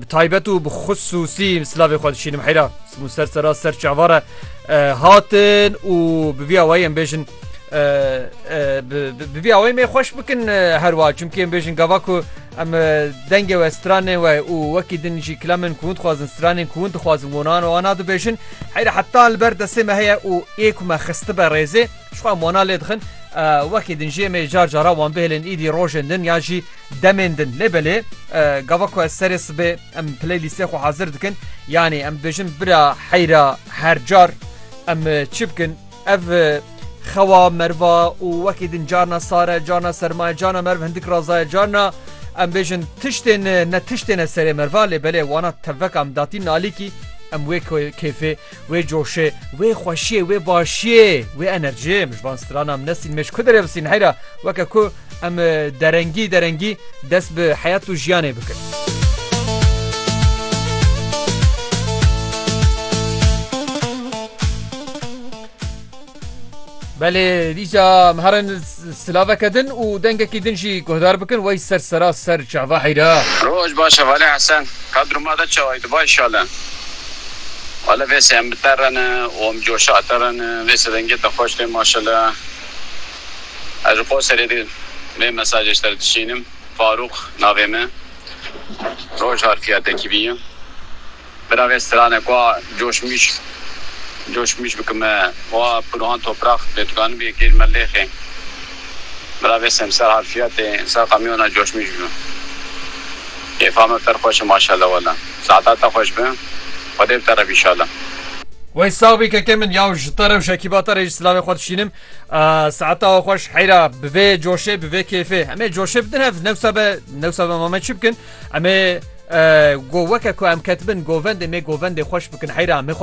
Bi taybet û bi xisûsî silavê xwe dişînim heyra û ser sera ser çavare hatin û bi vî awayê em bêjin bi vî awayê mê xweş bikin her wa çimkî em bêjin gava ku em dengê we stranê we û wekî din jî kilemên ku hûn dixwazin stranên ku hûn dixwazin wonan wana dibêjin heyra heta li ber destê me heye û ê ku me xistibe rêzê jixwe em wana lê dixin wekî din jê mê car cara wan bihêlin îdî rojên din ya jî Demên din lê belê gava ku ez serê sibê em playlîstê xwe hazir dikin yanî em dibêjin bira heyra her car em çi bikin ev xewa merva û wekî din carna sare carna sermaye carna merv hindik razaye carna em bêjin tiştên ne tiştêne serê merva lê belê wana tevek em datî nalîkî em wê kêfê Wê coşê, wê xweşiyê, wê başiyê, wê enerjiyê min ji van strana min nesîn mêj ku derevsîn heyra weke ku em derengî derengî dest bi heyat û jiyanê bikin. Belê dîsa em herin silaveke din û dengekî din jî guhdar bikin wey ser sera ser çava heyra. Roj baş e Valê Hesen. Ka diruma de çawayî diba îşale. Wale vê sê em bi te re ne û em coşa te re ne. Vê sê dengê te xweş tê maşele. Ez ji Qoserê de vê mesajê ji te re dişînim. Farûq navê me. Roj harfiya tekî bî ye. Birave strane ku a coşmîş coşmîş bikime û a pûrohan toprax dê tukanibî yê kêj me lêxê. Birave sem ser harfiyatê ser qamiyona coşmîş bû. Kêfa me per xweş e maşella wela. Saeta te xweş be. Xwedê bi te re be inşalla. Wey sax bî keke min yaw ji te re û şekîba te re jî silavê xwe dişînim. Saeta xweş heyra bi vê coşê bi vê kêfê. Em ê coşê bidin hev newsa be newsa be ma me çi bikin. Em ê go weke ku em ketibin govendê me govendê xweş bikin heyra em ê xwe